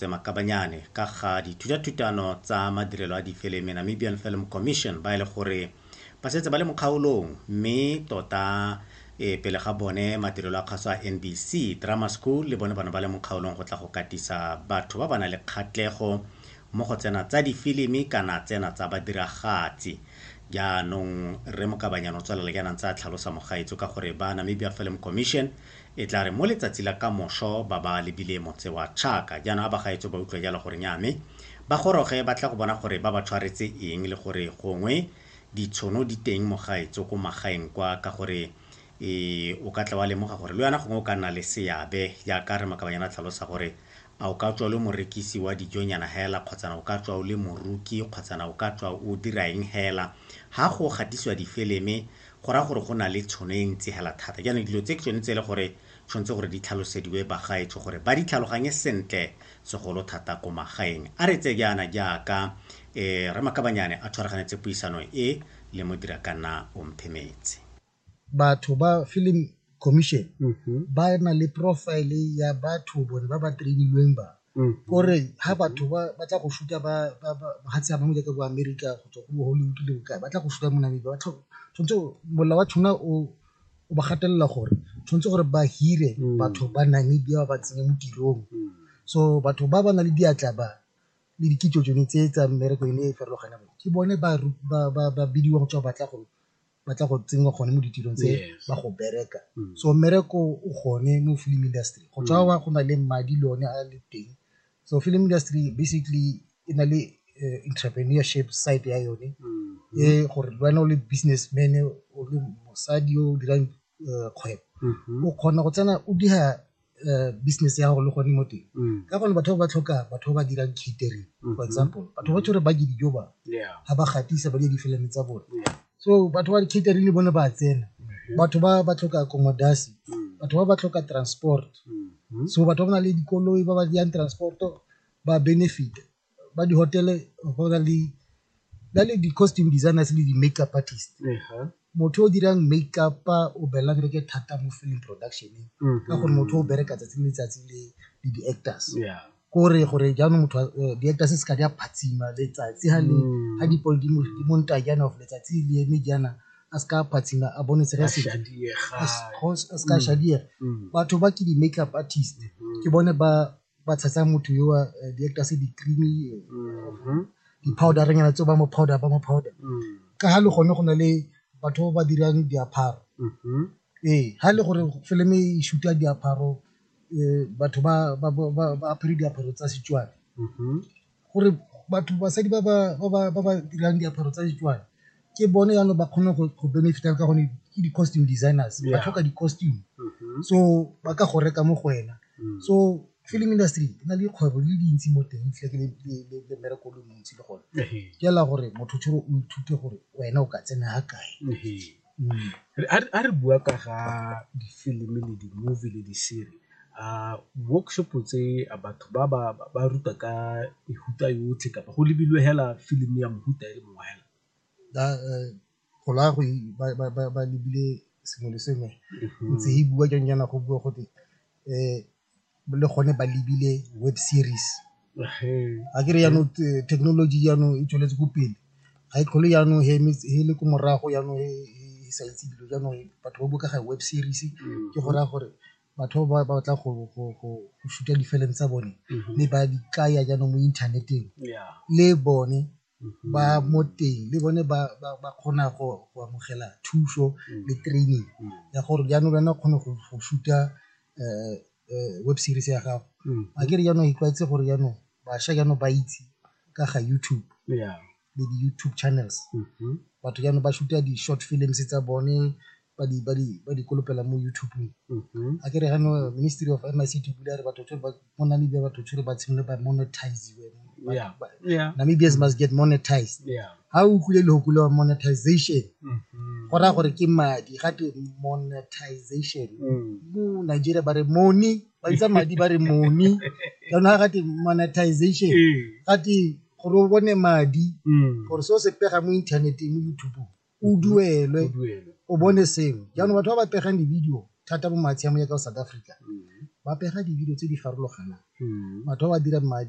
Tse makabanyane ka ga dithutathutano tsa madirelo a difilimi Namibian Film Commission ba e le gore ba setse ba le mo kgaolong mme tota e pele ga bone madirelo a kgaso a NBC Drama School le bone bana ba le mo kgaolong go tla go katisa batho ba ba na le kgatlego mo go tsena tsa difilimi kana tsena tsa badiragatsi jaanong re mokabanyana o tswelela jaanang tsa tlhalosa mogaetso ka gore ba Namibia Film Commission E tla re mo letsatsi la kamošo ba ba lebile motse wa Tšhaka. Jaanong a bagaetsho ba utlwa jalo gore nnyaa me ba goroge ba tle go bona gore ba ba tshwaretse eng le gore gongwe ditshono di teng mogaetso ko magaeng kwa ka gore e o ka tla wa lemoga gore le wena gongwe o ka nna le seabe jaaka Rre Makabanyana a tlhalosa gore a o ka tswa o le morekisi wa dijonyana hela kgotsana o ka tswa o le moruki kgotsana o ka tswa o dira eng hela ha go gatisiwa difeleme go raya gore go na le tshono e ntsi hela thata jaanong dilo tse ke tsone tse e le gore tshwanetse gore di tlhalosediwe bagaetsho gore ba di tlhaloganye sentle segolo thata ko magaeng a re tse jaana jaaka um eh, ramakabanyane a tshwaraganetse puisano e le modira ka nna omphemetse batho ba film commission mm -hmm. ba na le profile ya batho bone ba ba trainilweng ba Mm. kore ha batho ba ba tla go shuta ba ba ba ha tsa bangwe jaaka bo America go tswa go bo Hollywood le bokae ba tla go shuta mo Namibia ba tlho- tshwanetse o- mola wa tshwana o o ba gatelela gore tshwanetse gore ba hire Mm. batho ba Namibia ba ba tsenye mo tirong Mm. so batho ba ba na le diatla ba le dikitso tsone tse tsa mmereko e ne e farologaneng ke bone ba ru- ba ba ba bidiwa go tswa batla go ba tla go tsenngwa gone mo ditirong tse ba go bereka mm. so mmereko o gone mo film industry go tswa mm. wa go na le madi le one a le teng so film industry basically e na le eh, entrepreneurship side ya yone mm. e gore le wena o le businessman o le mosadi o dirang eh, kgwebo mm-hmm. o kgona go tsena o dira eh, business ya gago le gone mo teng mm. ka gone batho ba ba tlhoka batho ba ba dirang catering for mm-hmm. example batho ba tshwere ba je dijo ba ga ba gatisa ba je difelane tsa bone so batho ba catering le bone ba tsena mm-hmm. batho ba ba tlhoka accommodation mm. batho ba ba tlhoka transport mm-hmm. so batho ba ba na le dikoloi ba ba yang transport ba benefit ba di-hotel-e go na le ba le di-costume designers le di-make up artist motho o dirang make up o belela kereke thata mo film production-eng ka gore motho o bereka tsatsi le letsatsi le le di-actors kore gore jaanong motho eh, di-actors se ka di a phatsima letsatsi ha le ha dipole di mo- di monta jaana of letsatsi le eme jaana a se ka a phatsima a bone se re se a se ka shadiega batho ba ke di-make up artist ke bone ba ba tshetsa motho yo a eh, di actor se di creamy eh, Mhm. di powder nyana tse ba mo powder ba mo powder Mm. ka ha le gone go na le batho ba ba dirang diaparo Mhm. ee ha le gore fileme e shuta diaparo eh, batho ba ba- ba- ba- ba apere diaparo tsa setswana Mhm. gore batho basadi ba ba dirang diaparo tsa Setswana ke bone yanong ba kgone go benefit-a ka gone ke di-costume designers ba tlhoka di-costume mm-hmm. so ba ka go reka mo go wena mm. so film industry e na le dikgwebo le dintsi mo teng tle ke le mmereko le montsi le gone ke ela gore motho tshore o ithute gore wena o ka tsena ga kae Ga re bua ka ga difilimi le di-movie le di-serie workshop tse batho ba ba ruta ka mehuta yotlhe kapa go lebilwe fela film ya mohuta e le mongwe fela? Go raya gore ba lebile sengwe le sengwe ntse e buiwa jang jaana go buiwa gote . le gone ba lebile web series, a ke re jaanong thekenoloji jaanong e tsweletse ko pele ga e tlhole jaanong e le ko morago jaanong e sa itse dilo jaanong batho ba bua ka ga web series ke go raya gore batho ba ba batlang go shoot-a di-film tsa bone mme ba di jaanong mo inthaneteng le bone. ba mo teng le bone ba kgona go amogela thuso le training ya gore jaanong wena o kgone go shuta um um web series ya gago a ke re jaanong itlwaetse gore jaanong bašwa jaanong ba itse ka ga YouTube le di-YouTube channels batho jaanong ba shuta di-short films tsa bone ba di ba di ba di kolopela mo YouTube-ng Mhm. a ke re gano ministry of MIC to bula re batho tshwere ba mo Namibia batho tshwere ba tshimole ba monetize Yeah. Yeah. Namibians must get monetized Yeah. ha o utlwile lehoko le wa monetization Mhm. go raya gore ke madi ga te monetization Mm. mo Nigeria ba re money ba bitsa madi ba re money jaanong ga te monetization Eh. ga te gore o bone madi Mm. gore se o se pega mo inthaneteng mo YouTube o duelwe o bone sengwe jaanong batho ba ba pegang di-video thata mo matshiamong ya ka South Africa ba pega di-video tse di farologanang batho ba ba dirang madi